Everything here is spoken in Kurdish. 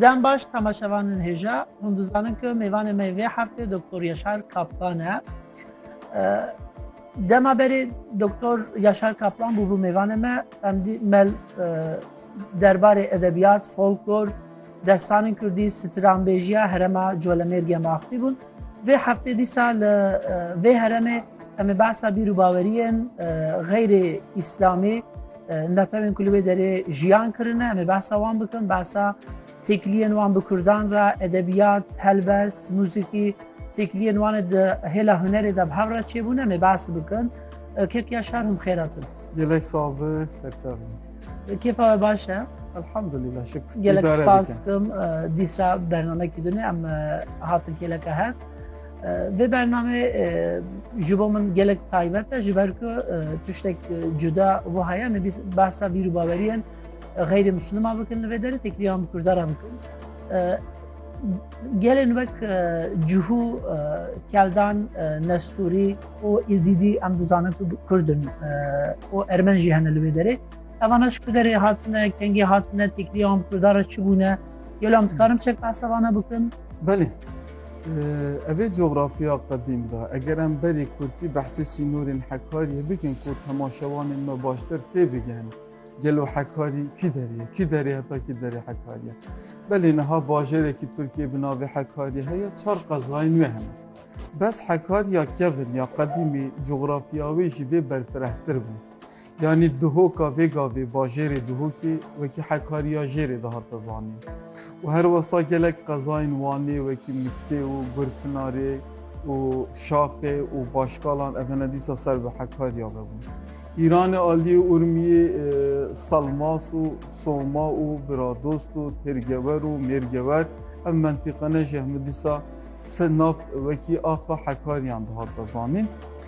Dem baş temaşevanên hêja, hûn dizanin ku mêvanê me vê heftê Doktor Yaşar Kaplan e. Dema berê Doktor Yaşar Kaplan bûbû mêvanê me, em dî mel derbarê edebiyat, folklor, destanên Kurdî, stranbêjiya herema Colemêrgê maxfî bûn. Vê heftê dîsa li vê heremê em ê behsa bîr û baweriyên xeyrê îslamî Netewên ku li wê derê jiyan kirine em ê behsa wan bikin, behsa têkiliyên wan bi Kurdan re, edebiyat, helbest, muzîkî, têkiliyên wan e di hêla hunerê de bi hev re çêbûne em ê behs bikin. Kekiya şer hûm xêratin. Gelek sağ be, serçe be. Kêfa we baş e? Elhamdülillah şükür. Gelek spas kim dîsa bernamekî dune em hatin kêleke hev. Vê bername ji bo min gelek taybet e ji ber ku tiştek cuda bo heye me behsa bîr û baweriyen xeyrê Müslüma bikin li vê derê tekriyan bi Kurdara bikin. Gelên wek cihû keldan nesturî û êzîdî em dizanin ku Kurdin û ermen jî hene li vê derê. Evana ji ku derê hatine kengê hatine tekriyan bi Kurdara çi bûne gelo em dikarim çek behsa vana bikin? Belê. Evê coğrafya qedîm de eger em berî kurtî behsê sînorên Hekariyê bikin ku hema şewanên me baştir tê bigihîn. Gelo Hekarî kî derê ye? Kî derê heta kî derê Hekariyê? Belê niha bajêrekî Tirkiyê bi navê Hekariyê heye çar qezayên wê hene. Bes Hekariya kevin ya qedîmî coğrafya wê jî vê berfirehtir bû. Yanî Duhoka vê gavê bajêrê Duhokê wekî Hekariya Jêrê dihate zanîn û her wisa gelek qezayên Wanê wekî Miksê û Gurpinarê û Şaxê û Başkalan evene dîsa ser bi Hekariya ve bûn. Îranê aliyê Urmiyê Salmas û Soma û Biradost û Têrgewer û Mêrgewer ev mentîqene jî hemû dîsa nav wekî axa Hekariyan dihate zanîn.